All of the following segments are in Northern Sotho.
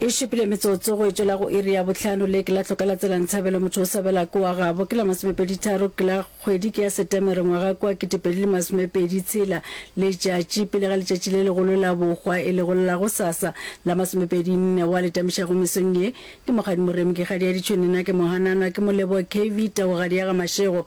e šupile metsotso go etšwela go iri ya bohlano le ke la tlhoka la tsela ntshabelo motho o sabela ko wa gabo ke la masomepeditharo ke la kgwedi ke ya setemere ngwaga kwa ketepedi le masomepedi tshela letšatši pele ga letšatši le legolo la bokgwa e legolo la go sasa la masomepedi nne wa letamišago mesong ye ke mokgadi moremi ke kgadi ya ditšhonena ke mohanana ke molebo kv taogadi ya ga mašego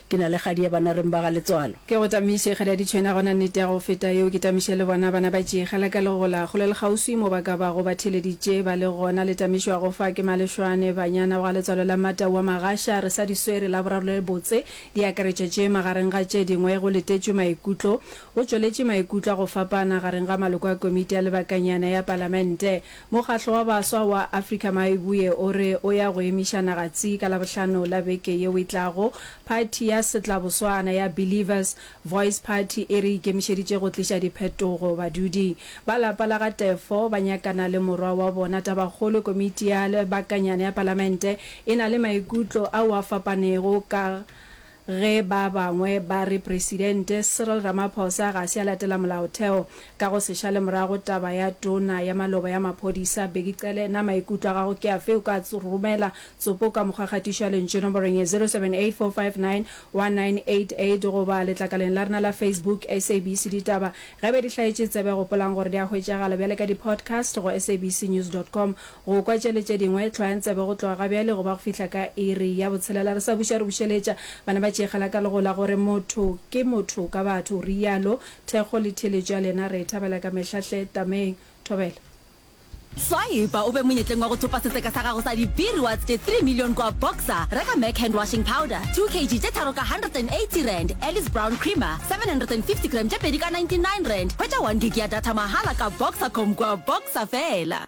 Ke na le kgadi ya banareng ba ga Letswalo. Ke go tamiše kgadi ya ditšhwena gona nnete ya go feta yeo ke tamiše le bona bana ba tšee kgala ka legola kgole le kgauswi mo ba ka bago ba theeleditše ba le gona le tamišwago fa ke Malešwane banyana ba ga Letswalo la Mata wa Magasha re sa di swere la boraro le le botse di akaretša tše magareng ga tše dingwe go letetšwe maikutlo go tšweletše maikutlo a go fapana gareng ga maloko a komiti ya lebakanyana ya palamente Mokgatlo wa Baswa wa Afrika Maaiboe o re o ya go emiša naga tsi ka Labohlano la beke yeo e tlago. Phathi ya Setlaboswana ya Believers Voice Party e re ikemišeditše go tliša diphetogo. Badudi ba lapa la ga Teffo ba nyakana le morwa wa bona. Tabakgolo, Komiti ya Lebakanyana ya Palamente e na le maikutlo ao a fapanego ka Ge ba bangwe ba re Presidente Cyril Ramaphosa ga se a latela molaotheo ka go se šale morago taba ya Tona ya Maloba ya Maphodisa Bheki Cele, na maikutlo a gago ke afe? O ka romela tsopo ka mokgwa kgatišo ya lentšu nomborong ye 0784591988 goba letlakaleng la rena la Facebook SABC Ditaba. Ge be di hlaetše tsebe, gopolang gore di a hwetšagala bjale ka di-podcast go sabcnews dot com. Go kwa tšeli tše dingwe, hlwayang tsebe go tloga ga bjale go ba go fihla ka iri ya botshelela. Re sa buša re bušeletša, bana ba tšeegela ka lego la gore motho ke motho ka batho, o realo. Thekgo le theeletšo ya lena re e thabela ka mehla hle. Tameng. Thobela. Swaipa o be monyetleng wa go thopa setseka sa gago sa dibiri wa tse 3 million kua Boxer. Reka Mac Hand Washing Powder, 2 kg tše tharo ka R180, Alice Brown Creamer, 750 gram tše pedi ka R99. Hwetša one gig ya data mahala ka Boxercom kua Boxer fela.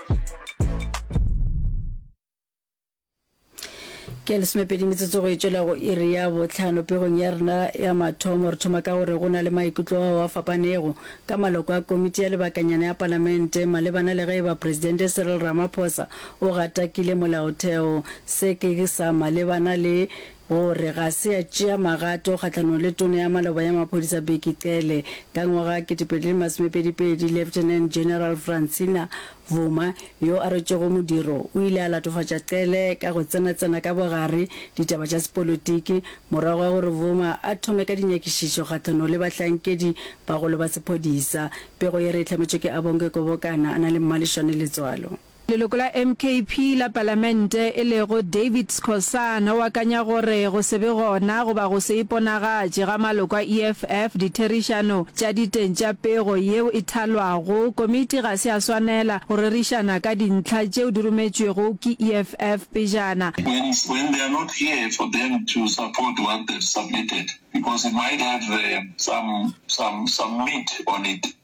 ke lesomepedi metsotso go etšwela go iri ya botlhano pegong ya rena ya mathomo re thoma ka gore go na le maikutlo ao a fapanego ka maloko a komiti ya lebakanyana ya palamente malebana le ge e ba presidente cyril ramaphosa o gatakile molaotheo se ke sa malebana le O re ga se a tšea magato kgahlanong le Tona ya Maloba ya Maphodisa Bheki Cele. Ka ngwaga 2022, Lieutenant General Francina Vuma, yo a rwetšego modiro, o ile a latofatša Cele ka go tsenatsena ka bogare ditaba tša sepolotiki morago ga gore Vuma a thome ka dinyakišišo kgahlanong le bahlankedi bagolo ba sephodisa. Pego ye re e hlametšwe ke Abonge Kobokana a na le Mmaleshwane Letswalo. Leloko la MKP la palamente e lego David Skhosana o akanya gore go se be gona goba go se iponagatše ga maloko a EFF ditherišano tša diteng tša pego yeo e thalwago komiti ga se ya swanela go rerišana ka dintlha tšeo di rometšwego ke EFF pejana When when they are not here for them to support what they've submitted because it might have some some some meat on it.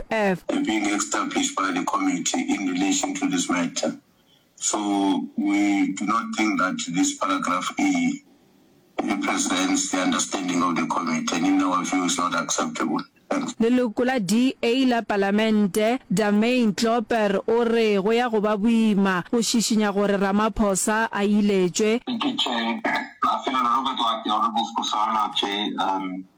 Ev. A being established by the committee in relation to this matter. So we do not think that this paragraph e represents the understanding of the committee and in our view is not acceptable. Thanks. Leloko la DA la Palamente, Damain Klopper o re go ya go ba boima go šišinya gore Ramaphosa a iletšwe. Ke tše, a felela Robert Wagner o re Bospho Solo tše, um.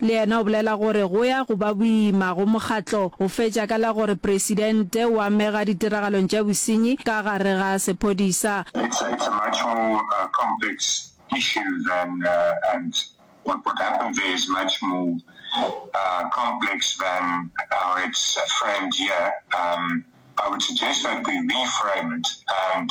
Le yena o bolela gore go ya go ba boima go mokgatlo go fetša ka la gore presidente o amega ditiragalong tša bosenyi ka gare ga sephodisa. It's a, it's a much more uh, complex issue than uh, and what, what happened there is much more uh, complex than how it's framed here. Um, I would suggest that we reframe it and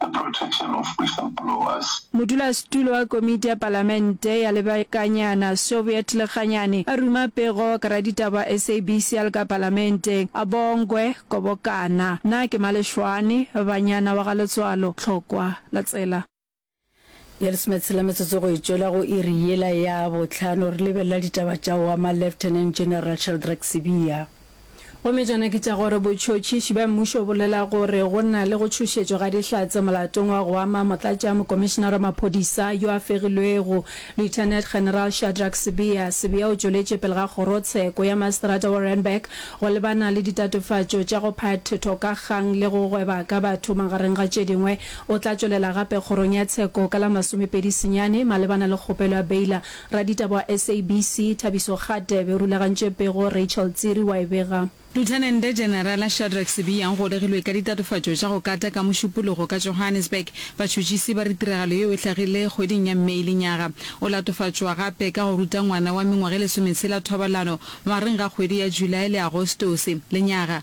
the protection of whistleblowers. Modulasetulo wa Komiti ya Palamente ya Lebakanyana, Soviet Lekganyane, a ruma pego ka raditaba wa SABC a le ka Palamenteng, a Bongwe Kobokana. Na ke Maleshwane, banyana wa ga Letswalo, Tlhokwa, la tsela? Bjale lesome le tshela metsotso go e tšwela go iri yela ya bohlano, re lebelela ditaba tša oa ma Lieutenant General Sheldrak Sibiya. Gomme tšona ke tša gore botšhotšhiši bja mmušo o bolela gore go na le go tšhošetšwa ga dihlatse molatong wa go ama motlatša mokomišenara wa maphodisa yo a fegilwego, Lieutenant General Shadrak Sibiya. Sibiya o tšweletše pele ga kgorotsheko ya maseterata wa Randburg go lebana le ditatofatšo tša go phathoka kgang le go gweba ka batho magareng ga tše dingwe O tla tšwelela gape kgorong ya tsheko ka la masomepedi senyane malebana le kgopelo ya Baylor. Raditaba wa SABC, Thabiso Gate, be rulagantše pego, Rachel Tsiri wa e bega. Luthenente Generala Shadrack Sibiya o golegilwe ka ditatofatšo tša go kata ka Mošupologo ka Johannesburg. Batšhutšisi ba re tiragalo yeo e hlagile kgweding ya May lenyaga. O latofatšwa gape ka go ruta ngwana wa mengwaga e lesometshela thobalano magareng ga kgwedi ya July le Agostose lenyaga.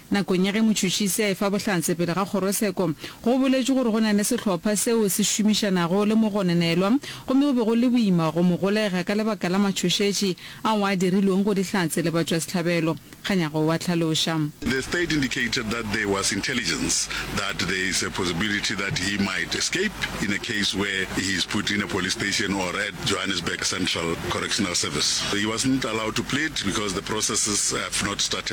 Nakong ya ge motšhotšhisi a efa bohlatse pele ga kgorotsheko, go boletšwe gore go na le sehlopha seo se šomišanago le mogononelwa gomme go be go le boima go mo golega ka lebaka la matšhošetši ao a dirilwego go dihlatse le batšwasehlabelo. Kganyago o a hlaloša. The state indicated that there was intelligence that there is a possibility that he might escape in a case where he is put in a police station or at Johannesburg Central Correctional Service. He wasn't allowed to plead because the processes have not started.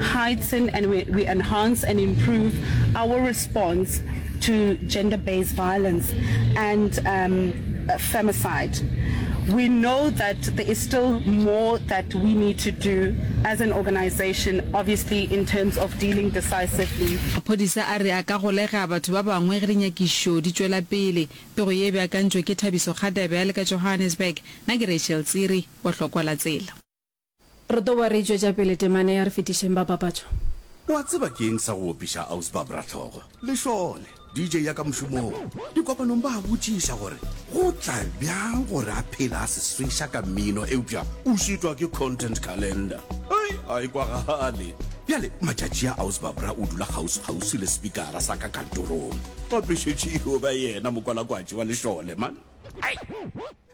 heighten and we, we enhance and improve our response to gender based violence and um, femicide. We know that there is still more that we need to do as an organization, obviously, in terms of dealing decisively. Maphodisa a re a ka golega batho ba bangwe ge dinyakišo di tšwela pele. Pego ye e beakantšwe ke Thabiso Kgadebe a le ka Johannesburg. Na ke Rachel Tsiri wa Hlokolatsela. Re tlo boa re e tšwetša pele temana e a re fetišeng ba papatšo. O a tseba ke eng sa go opiša Ausbab Rahlogo? Lešole, DJ ya ka mošomong, dikopanong ba a botšiša gore go tla bjang gore a phele a seswesha ka mmino eupša o šitwa ke content calendar. Hei, a e kwagale. Bjale matšatši a Ausbab Ra o dula kgauswikgauswi le sepikara sa ka kantorong. Gape šetše e yo ba yena mokwalakwatši wa Lešole, man. Hei!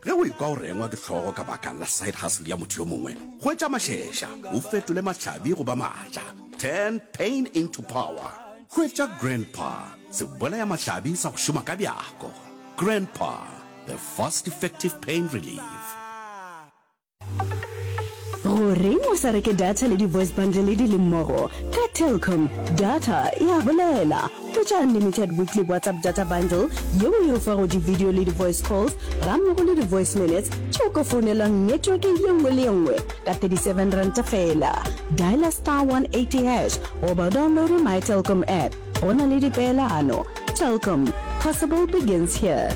Ge o ekwa o rengwa ke hlogo ka baka la side hustle ya motho yo mongwe, hwetša mašeša o fetole mahlabi go ba matla. Turn pain into power. Hwetša Grandpa, sebolaya mahlabi sa go šoma ka bjako. Grandpa, the fast effective pain relief. Goreng o sa reke data le di-voice bundle di le mmogo? Ka Telkom, data e a bolela. Hwetša unlimited weekly WhatsApp data bundle yeo e o fago di-video le di-voice calls gammogo le di-voice minutes tše o ka founelwang network ye nngwe le ye nngwe ka R37 feela. Dialer star 180 hash goba o downloade My Telkom app. Go na le dipeelano. Telkom, possible begins here.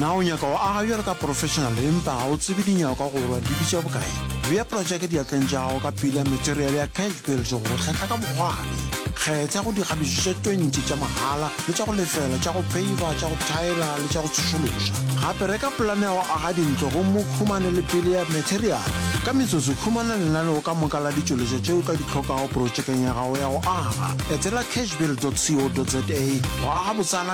na o nyaka go aga bjalo ka professional empa ga o tsebe dinyakwa gorwa di bitša bokae bea projeke diatleng tša gago ka pila material ya cash bills go kgetha ka bogwane kgetha go dikgabišo tše 20 tša mahala le tša go lefela tša go peiva tša go thaela le tša go tsošološa gape reka polane ya go aga dintlo gomme o khumane le pele ya material ka metsotso khumana lenaneo ka moka la ditšweletšo tšeo ka di tlhokago projekeng ya gago ya go aga etela cashbill co za go aga botsala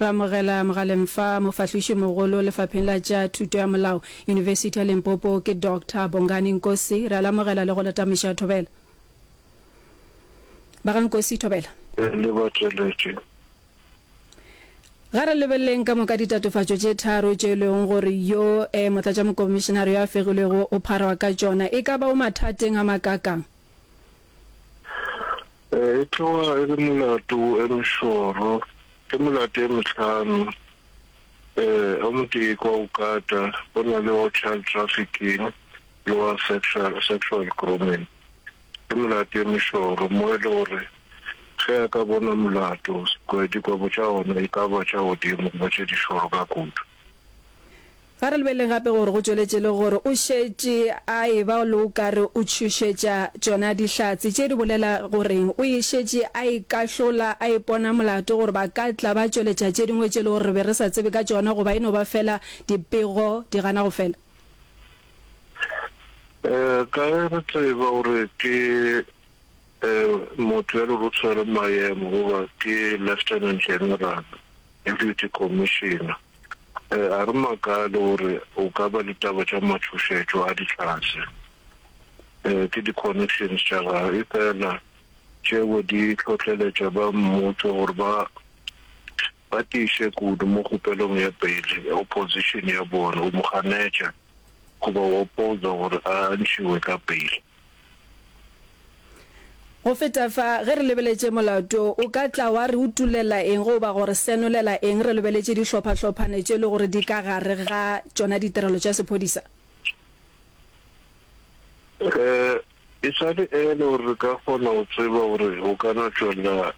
Re amogela mogaleng fa Mofahlošimogolo Lefapheng la tša Thuto ya Molao, Yunibesithi ya Limpopo ke Doctor Bongani Nkosi. Re a le amogela le go le tameša thobela. Ba ga Nkosi, Thobela. Ee, le bateletše. Ga re lebeleleng ka moka ditatofatšo tše tharo tšeo e lego gore yo e Motlatšamokomišenare yo a fegilwego o pharwa ka tšona. E ka ba o mathateng a makaakang? E tloga e le molato wo e mešoro. Ke melato e mehlano, o motee ke wa go kata, go na le wa child trafficking le wa sexual, sexual grooming. Ke melato e mešoro mo e le gore ge a ka bona molato, dikwebo tša ona e ka ba tša godimo goba tše dišoro ka kudu. Ga re lebelele gape gore go tšweletše le gore o šetše a e-ba le o ka re o tšhošetša tšona Dihlatse tše di bolela gore o e šetše a e kahlola, a ipona molato gore ba ka tla ba tšweletša tše dingwe tše e le gore re be re sa tsebe ka tšona goba e no ba feela dipego di gana go fela. Kae re tseba gore ke motho ya lerutshwere Mayemo goba ke Lieutenant General? Deputy Commissioner, a re makale gore o ka ba le taba tša matšhošetšo a ditlhase ke di-connections tša gagwe efela tšeo di tlhohleletša ba mmušo gore ba ba tiiše kudu mo kgopelong ya beile opposition ya bona o mo ganetša goba o opposa gore a ntšhiwe ka beile. Go feta fa, ge re lebeletše molato, o ka tla wa re utulela eng goba go re senolela eng re lebeletše dihlopha-hlophane tše e lego gore di ka gare ga tšona ditirelo tša sephodisa? Ee, e sa le early gore re ka kgona go tseba gore go ka no tšwela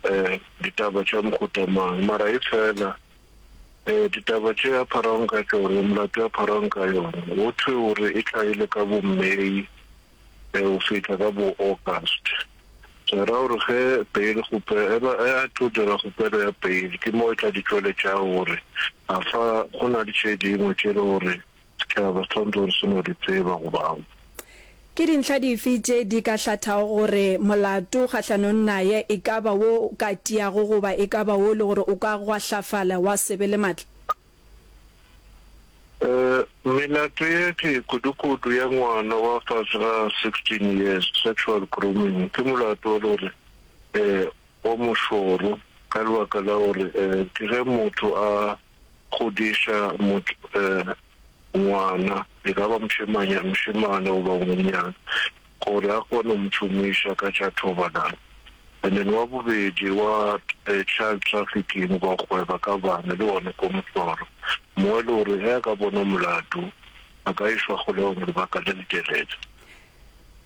ditaba tša mohuta mang, mara efela, Ee, ditaba tše a pharaong ka tšone, molato a pharaong ka yona, go thwe o re e tlhaile ka bo-May go fihla ka bo-August. Se ra gore ge bail kgopelo e ba e a tlo dira kgopelo ya bail, ke mo e tla di tšweletšago gore afa go na le tše dingwe tše le gore Ke a ba swanetše gore se no di tseba go ba. Ke dintlha dife tše di ka hlathago gore molato kgahlanong naye e ka ba wo o ka tiago goba e ka ba wo e le gore o ka gwahlafala wa se be le matla? Ee, melato ye tee kudukudu ya ngwana wa fase ga 16 years, sexual grooming, ke molato o le gore ee o mošoro ka lebaka la gore ee ke ge motho a. godiša ngwana, e ka ba mošemane goba o monyana, gore a kgone go mo tšhomiša ka tša thobalano. And then wa bobedi wa child trafficking goba go gweba ka bana le one ko mohlolo, mo e le gore ge a ka bonwa molato a ka išwa kgolegong lebaka le letelele.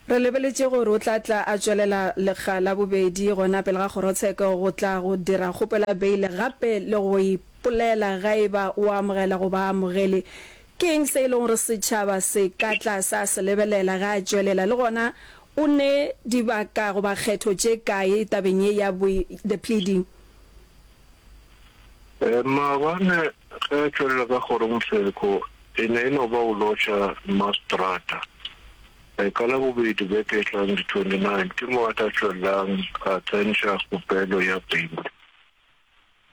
Re lebeletše gore o tla tla a tšwelela lekga la bobedi gona pele ga kgorotsheko go tla go dira kgopelo ya beile gape le go e ipolela ga e ba o amogela goba a amogele. Ke eng se e lego gore setšhaba se ka tla sa se lebelela ge a tšwelela le gona o ne dibaka goba kgetho tše kae tabeng ye ya the pleading? Maabane Ge a tšwelela ka kgorongtseko, e ne e no ba o lotšha Mastrata. Ka Labobedi beke e tlang, di 29, ke mo a tla tšwelelang a tsentšha kgopelo ya pele.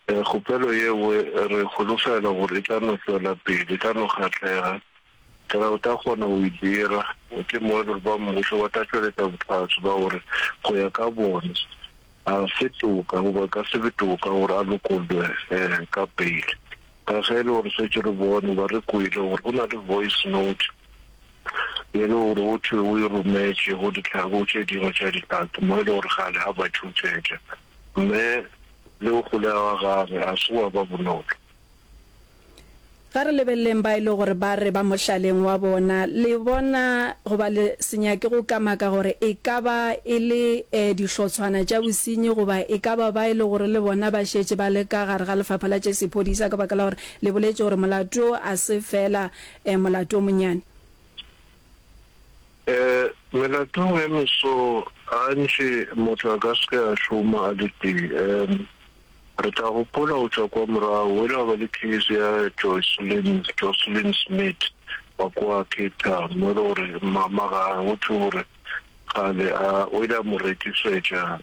Kgopelo yeo re holofela gore e tla no tšwela pele, e tla no kgahlega. Ka ge o tla kgona go e dira, o tli mmone gore ba mmušo ba tla tšweletša bohlatse ba gore go ya ka bona a se toka goba e ka se be toka gore a lokollwe ka peile. Ka ge e le gore šetše re bone goba re kwele gore go na le voice note ye le gore go thwe o e rometše go ditlhako tše dingwe tša Dihlatse mo e le gore kgale a ba tšhošetša, mme le go golega ga gagwe ga se gwa ba bonolo. Ga re lebeleleng ba e le gore ba re ba mohlaleng wa bona. Le bona, goba le se nyake go kamaka gore e ka ba e le dihlotshwana tša bosenyi, goba e ka ba ba e le gore le bona ba šetše ba le ka gare ga lefapha la tša sephodisa ka baka la gore le boletše gore molato wo a se feela molato o monyane. Melatong e meso, gantši motho a ka se ke a šoma a le tee. Re tla gopola go tšwa kwa morago, o ile wa ba le theeletšo ya Jocelyn, Jocelyn Smit wa kwa Cape Town, mo e le gore mama ga go thwe gore kgale a, o ile a mo rekiswetša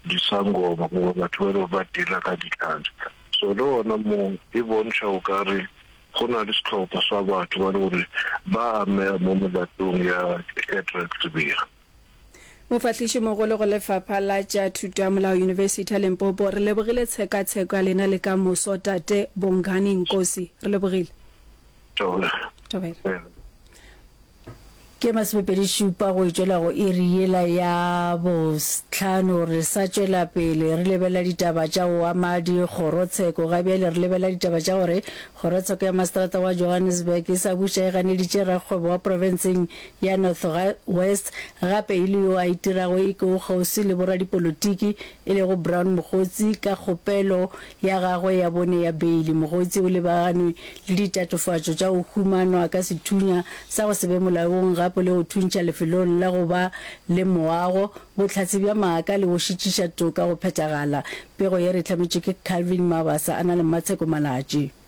disangoma goba batho ba e le gore ba dealer ka ditlhare. So le gona moo e bontšha o ka re go na le sehlopha sa batho ba e le gore ba amega mo molatong ya Shadrack Sibiya. Mofahlišimogolo go Lefapha la tša Thuto ya Molao Yunibesithi ya Limpopo, re lebogile tshekatsheko ya lena le ka moso Tate Bongani Nkosi. Re lebogile. Thobela. Ke masomepedi šupa go tšwela go iri yela ya bohlano re sa tšwela pele re lebelela ditaba tša go ama dikgorotsheko. Ga bjale re lebelela ditaba tša gore kgorotsheko ya maseterata wa Johannesburg e sa buša e ganeditše rakgwebo wa profenseng ya Northwest gape e le yo a itirago e ke o kgauswi le boradipolotiki e lego Brown Mogotsi ka kgopelo ya gagwe ya bone ya beili. Mogotsi o lebaganwe le ditatofatšo tša go humanwa ka sethunya sa go se be molaong gape le go thuntšha lefelong la go ba le moago, bohlatse bja maaka le go šitiša toka go phethagala. Pego ye re e hlametšwe ke Calvin Mabasa a na le Mmatsheko Malatši.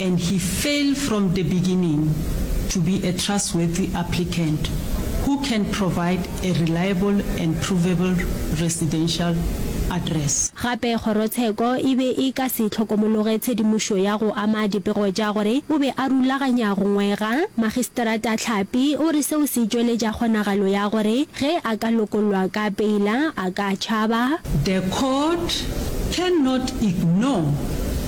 and he fail from the beginning to be a trustworthy applicant who can provide a reliable and provable residential address. Gape kgorotsheko e be e ka se hlokomologe tshedimošo ya go ama dipego tša gore o be a rulaganya go ngwega. Magistrata Tlhapi o re seo se tšweletša kgonagalo ya gore ge a ka lokollwa ka peila a ka tšhaba. The court cannot ignore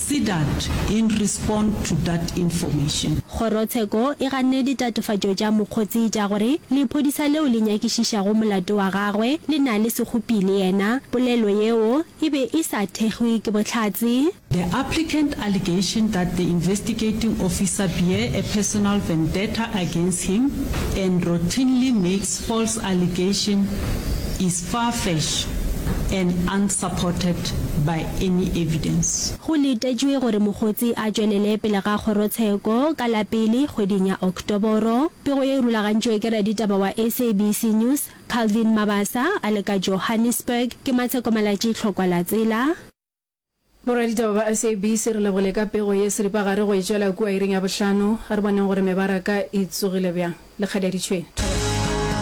Sedat in respond to dat information. Kgorotsheko e ganne ditatofatšo tša mokgotsi tša gore lephodisa leo le nyakišišago molato wa gagwe le na le sekgopi le yena. Polelo yeo e be e sa thekgwe ke bohlatse. The applicant allegation that the investigating officer bear a personal vendetta against him and routinely makes false allegation is. far-fetched and unsupported by any evidence. Go letetšwe gore Mogotsi a tšwelele pele ga kgorotsheko ka la pele kgweding ya Oktoboro. Pego ye e rulagantšwe ke raditaba wa SABC News, Calvin Mabasa, a le ka Johannesburg. Ke Matsheko Malatji, Tlhokwa la Tsela. Boraditaba ba SABC re lebogile ka pego ye seripagare go e tšwela kua iring ya bohlano. A re boneng gore mebaraka e tsogile bjang. Lekgaditšhwene.